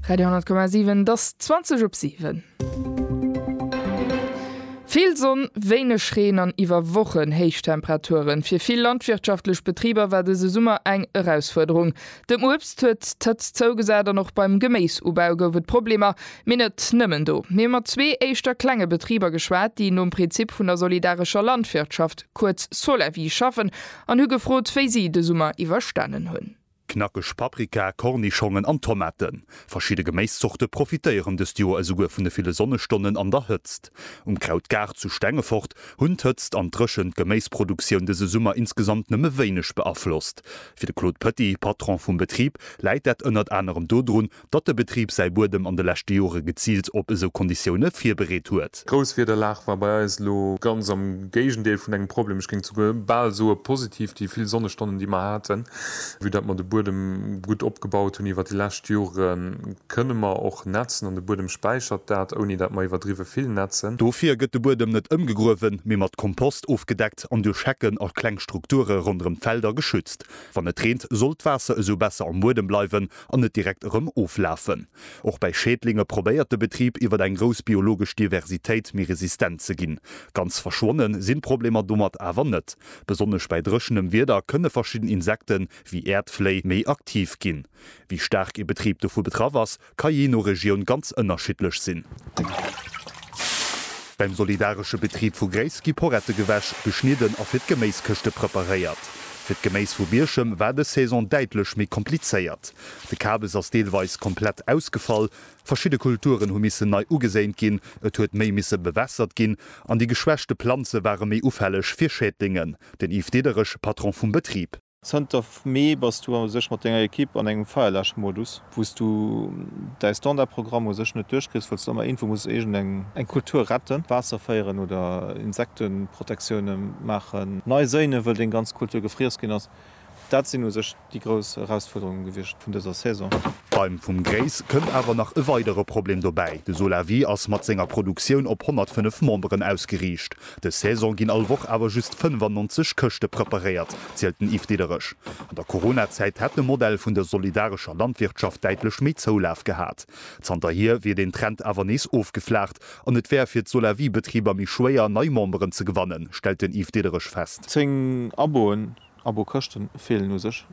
Radio 10,7 't ass 20 op 7. Vill Sonn, wéineg Reen an iwwer Wochen héich Temperaturen. Fir vill landwirtschaftlech Betriber war dëse Summer eng Erausfuerderung. Dem Uebst huet d'Hëtzt zougesat an och beim Geméisubau gouf et Problemer. Mee net nëmmen do. Mir hu mat zwee éischter klenge Betriber geschwat, déi nom Prinzip vun der solidarescher Landwirtschaft, kuerz Solawi, schaffen an hu gefrot, wéi si de Summer iwwerstanen hunn. Knackeg Paprika, Kornischongen an Tomaten. Verschidde Geméiszorte profitéieren dëst Joer esouguer vun de ville Sonnestonnen an der Hëtzt. Um Krautgaart zu Stengefort hunn d'Hëtzt an d'Dréchent d'Geméisproduktioun dëse Summer insgesamt nëmme wéineg beaflosst. Fir de Claude Petit, Patron vum Betrib, läit dat ënnert anerem dodrun, datt de Betrib säi Buedem an de leschte Jore geziilt op esou Konditioune virbereet huet. D'Grousswiederlag war bei eis elo ganz am Géigendeel vun engem Problem, ech géing souguer bal soe positiv, déi vill Sonnestonnen, déi mer haten, vue datt mer de Buedem gutt opgebaut hunn iwwer déi lescht Jore kënne mer och nätzen an de Buedem späichert dat, ouni datt mer iwwerdriwwe vill nätzen. Dofir gëtt de Buedem net ëmgegruewen, mee mat Kompost ofgedeckt an duerch Hecken a kleng Strukture ronderëm d'Felder geschützt. Wann et reent, soll d'Waasser esou besser am Buedem bleiwen an net direkt erëm oflafen. Och bäi Schädlinge probéiert de Betrib iwwer eng grouss biologesch Diversitéit méi resistent ze ginn. Ganz verschwonne sinn d'Problemer domat awer net. Besonnesch bäi dréchenem Wieder kënne verschidden Insekte wéi Äerdfléi méi aktiv ginn. Wéi staark ee Betrib dovu betraff ass, ka jee no Regioun ganz ënnerschiddlech sinn. Beim solidaresche Betrib vu Gréiss gi Porette gewäsch, geschnidden a fir d'Geméiskëschte preparéiert. Fir d'Geméis vu Bierchem war dës Saison däitlech méi komplizéiert. De Kabes ass deelweis komplett ausgefall, verschidde Kulturen hu missen nei ugeséint ginn, et huet méi misse bewässert ginn an déi geschwächte Planze ware méi ufälleg fir Schädlingen. Den Yves Diderich, Patron vum Betrib. Zënter Mee bass du u sech mat denger Ekipp an engem Feierlechmodus. Wou s du däi Standardprogramm u sech net duerchkriss, wëlls du ëmmer iergendwou muss iergendeng Kultur retten, Waasser féieren oder Insekteprotektioune maachen. Nei séine wëll deng ganz Kultur gefriess ginn ass. Dat sinn u sech déi grouss Erausfuerderunge gewiescht vun dëser Saison. Beim Vum Gréis kënnt awer nach e weidere Problem dobäi, de Solawi ass mat senger Produktioun op 105 Memberen ausgeriicht. Dës Saison ginn all Woch awer just 95 Këschte preparéiert, zielt den Yves Diderich. An der Corona-Zäit hätt de Modell vun der solidarescher Landwirtschaft däitlech méi Zoulaf gehat. Zanterhier wier den Trend awer nees ofgeflaacht an et wär fir d'Solawi-Betriber méi schwéier, nei Memberen ze gewannen, stellt den Yves Diderich fest. Zéng Aboen, Abo-Këschte feelen u sech.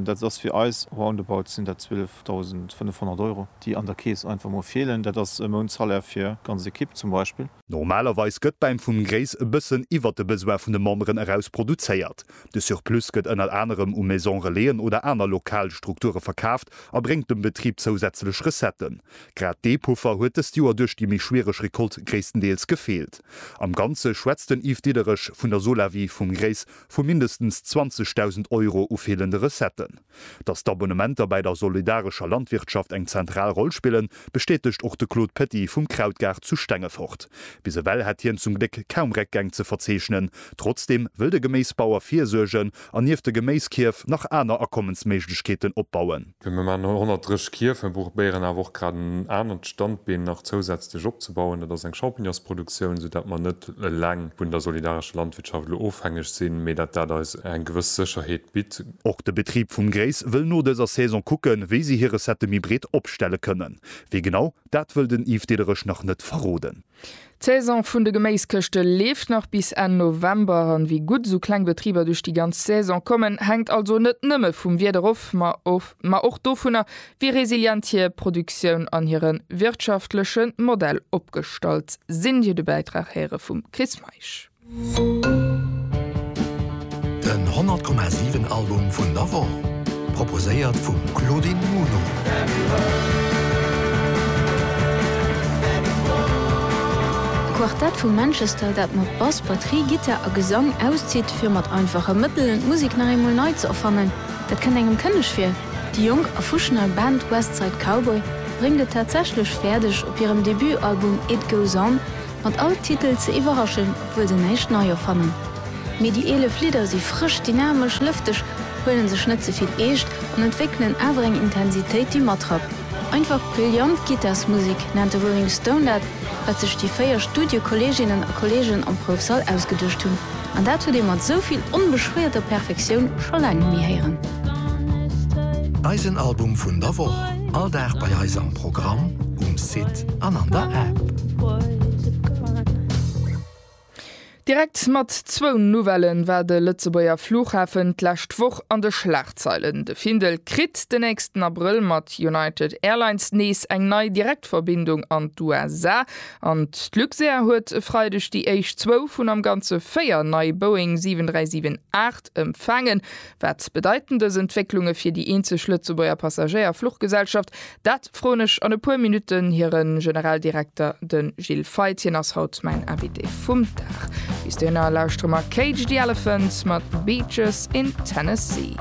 Dat ass fir eis roundabout sinn dat 12.500 Euro, déi an der Keess einfach mol feelen. Dat ass e Mountsalaire fir ganz Ekipp zum Beispill. Normalerweis gëtt bäim vum Gréis e bëssen iwwert de Besoin vun de Memberen eraus produzéiert. De Surplus gëtt ënnert anerem u Maison-relaisen oder aner lokal Strukture verkaaft a bréngt dem Betrib zousätzlech Recetten. Grad dee Puffer huet dëst Joer duerch déi méi schwiereg Recolte gréisstendeels gefeelt. Am Ganze schwätzt den Yves Diederich vun der Solawi vum Gréis vu mindestens 20.000 Euro u feelende Recetten. Dass d'Abonnementer bäi der solidarescher Landwirtschaft eng zentral Roll spillen, bestätegt och de Claude Petit vum Krautgaart zu Stengefort. Bis ewell hätt hien zum Gléck kaum Réckgäng ze verzeechnen. Trotzdeem wëll de Geméisbauer virsuergen an nieft de Geméiskierf nach aner Akommensméiglechkeeten opbauen. Mir hunn am Moment 130 Kierf, mir probéieren awer och grad en anert Standbeen nach zousätzlech opzebauen, dat ass eng Champignonsproduktioun, sou dat mer net eleng vun der solidarescher Landwirtschaft elo ofhängeg sinn, mee dat dat eis eng gewëss Sécherheet bitt. Och de Betrib vum Grace wëll no dëser Saison kucken, wéi si hir Recettë méi breet opstelle kënnen. Wéi genau, dat wëll den Yves Diederich nach net verroden. D'Saison vun de Geméiskëschte leeft nach bis Enn November an wéi gutt esou kleng Betriber duerch déi ganz Saison kommen, hänkt also net nëmme vum Wieder of, ma och dovunner, wéi resilient hir Produktioun an hire wirtschaftleche Modell opgestallt sinn. Dir de Bäitrag héiere vum Chris Meisch. Den 100 Komma 7 Album vun der Woch, proposéiert vum Claudine Muno. D'Quartett vu Manchester, dat mat Bass, Batterie, Gittar a Gesang auszitt, fir mat einfache Mëttelen d'Musek nach eemol nei ze erfannen, dat kënnt engem kënneg vir. Déi jonk a fusch nei Band West Side Cowboy bréngt et tatsächlech fäerdeg, op hirem Debutalbum It Goes On Mat all Titel ze iwwerraschen, obwuel se näischt nei erfannen. Mee déi 11 Lidder si frësch, dynamesch, lëfteg, huelen sech net ze vill eescht an entwéckelen awer eng Intensitéit, déi matrappt. Einfach brillant Gittarsmusek nennt de Rolling Stone dat, wat sech déi véier Studiekolleeginnen a kolleegen am Proufsall ausgeduecht hunn. An dat huet ee mat esou vill onbeschwéierter Perfektioun scho laang net méi héieren. Eisen Album vun der Woch, all Dag bei eis am Programm, um Site an an der App. Direkt mat zwou Nouvellen war de Lëtzebuerger Flughafen d'lescht Woch an de Schlagzeilen. De Findel kritt de nächsten Abrëll mat United Airlines nees eng nei Direktverbindung an d'USA. An d'Luxair huet e Freideg déi éischt zwou vun am Ganze véier nei Boeing 737-8 empfaangen. Wat bedeiten dës Entwécklunge fir déi eenzeg Lëtzebuerger Passagéier-Fluchgesellschaft? Dat froen ech an e puer Minutten hire Generaldirekter, de Gilles Feith. Hien ass haut mäin Invité vum Dag. Bis dohinner lauschteren mer Cage the Elephant mat Beaches in Tennessee.